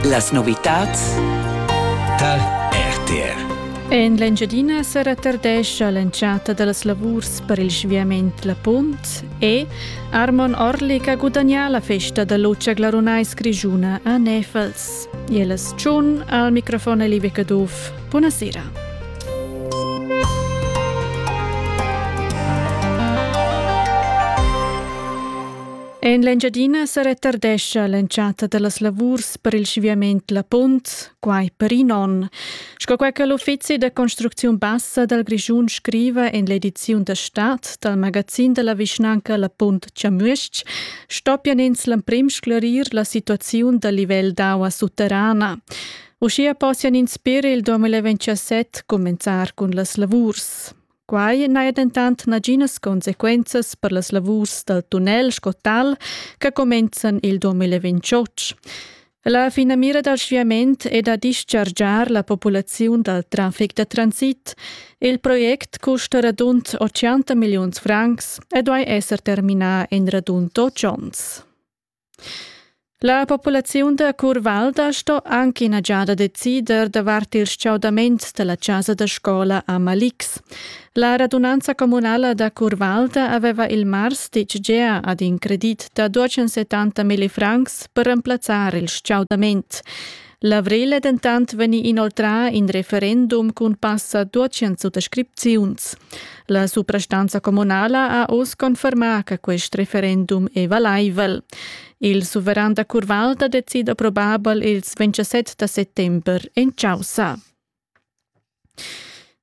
Las novitads tar RTR. En l'Engiadina sa retardescha l'entschatta da las lavurs per il sviament La Punt e Armon Orlik ha gudagnà la festa da lucha glarunais grischuna a Nefels. Jelas Tschun al microfon Elive Caduff. Buonasera. En l'Engiadina sa retardescha l'entschatta da las lavurs per il sviament La Punt, quai per in onn. Sco quai che l'uffizi da construcziun bassa dal Grischun scriva en l'ediziun da Stadt dal magazin da la vischnanca La Punt Chamüsch, stoppian ins l'emprim sclerir la situaziun dal livel d'aua sutterrana. Uschia possian ins per il 2027 cumenzar cun las lavurs. Quai n'haja dentant naginas consequenzas per las lavurs dal tunnel sco tal che cumenzan il 2028. La finamira dal sviament è da dischargiar la populaziun dal traffic da transit. Il project custa radund 80 milliuns francs e duai esser terminà en radund 8 onns. La populaziun da Curvalda sto anc ina giada decider davart il stgaudament dalla chasa da scola a Malix. La radunanza communala da Curvalda aveva il mars ditg gea ad in credit da 270 millifrancs per remplazzar il stgaudament. L'avrel è dentant vegnì inoltrà in referendum cun passa 200 suttascripziuns. La suprastanza communala ha oz confermà che quest referendum è valaivel. Il suveran da Curvalda decida probabel ils 27 da settember en Chaussa.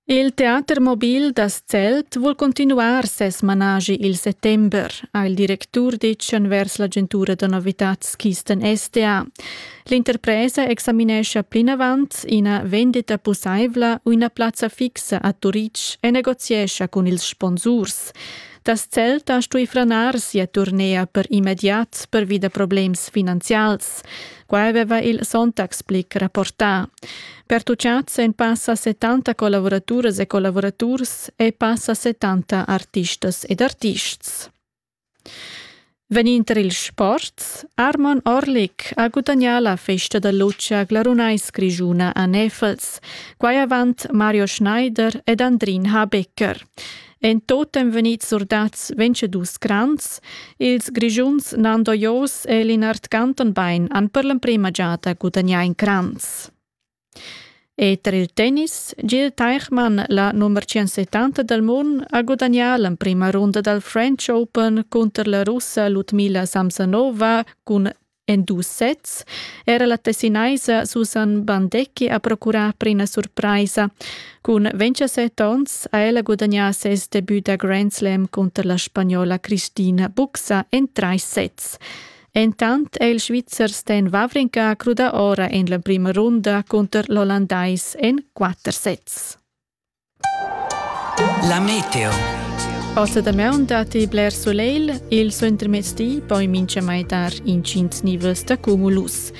Il teater mobil da Zelt vul cuntinuar ses managi il settember, ha il directur ditg envers l'agentura da novitads Kisten SDA. L'interpresa examinescha plinavant ina vendita pussaivla u ina plazza fixa a Turitg e negoziescha cun ils sponsurs. Das Zelt ha stuì franar sia turnea per immediat pervi da problems finanzials. Quai aveva il Sonntagsblick rapportà. Pertuchads en passa 70 collavuraturas e collavuraturs e passa 70 artistas ed artists. Venind il sport, Armon Orlik ha gudagnà la festa da luce a Glarunais Grischuna a Nefels, quai avant Mario Schneider ed Andrin Habecker. En totem vegnit surdats vencedus grans, ils Grigiuns Nando Jos e Linard Cantonbein han per l'emprema giada gudagnà in cranz. E tra il tennis, Gil Teichmann, la nummer 170 del Mund, ha gudagnà l'emprima runda dal French Open cunter la russa Ludmila Samsonova cun En dus sets era la tessinaisa Susan Bandecchi a procurar per ina surpraisa. Cun 27 onns ha ella gudagnà ses debut da Grand Slam cunter la spagnola Cristina Buxa en trais sets. Entant è il Svizzer Stan Wawrinka crudà ora en l'emprima runda cunter l'Ollandais en quatter sets. La meteo. Ossa da maun datti bler soleil, il suentermezdi poi mincha maitar incint nivels da cumulus.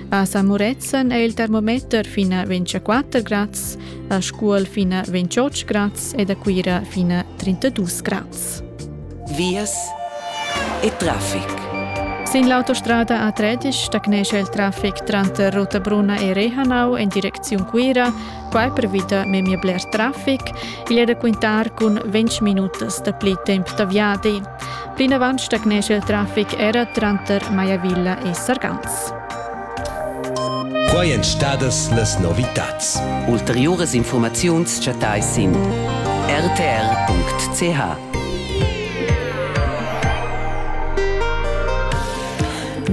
A San Murezzan è il termometer fin a 24 grads, a Scuol fin a 28 grads ed a Cuira fin a 32 grads. Vias e traffic. Sin l'autostrada A13 stagnesce il traffic tranter Rotabruna e Rehanau in direcziun Cuira Quai pervida memia bler traffic. Igl è da quintar cun ventg minutas dapli temp da viadi. Plinavant stagnescha il traffic era tranter Maiavilla e Sargans. Quai èn stadas las novitads. Ulteriuras informaziuns chattais sin rtr.ch.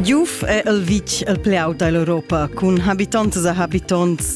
Giuf è el vitg el pli aut da l'Europa cun habitontas e habitonts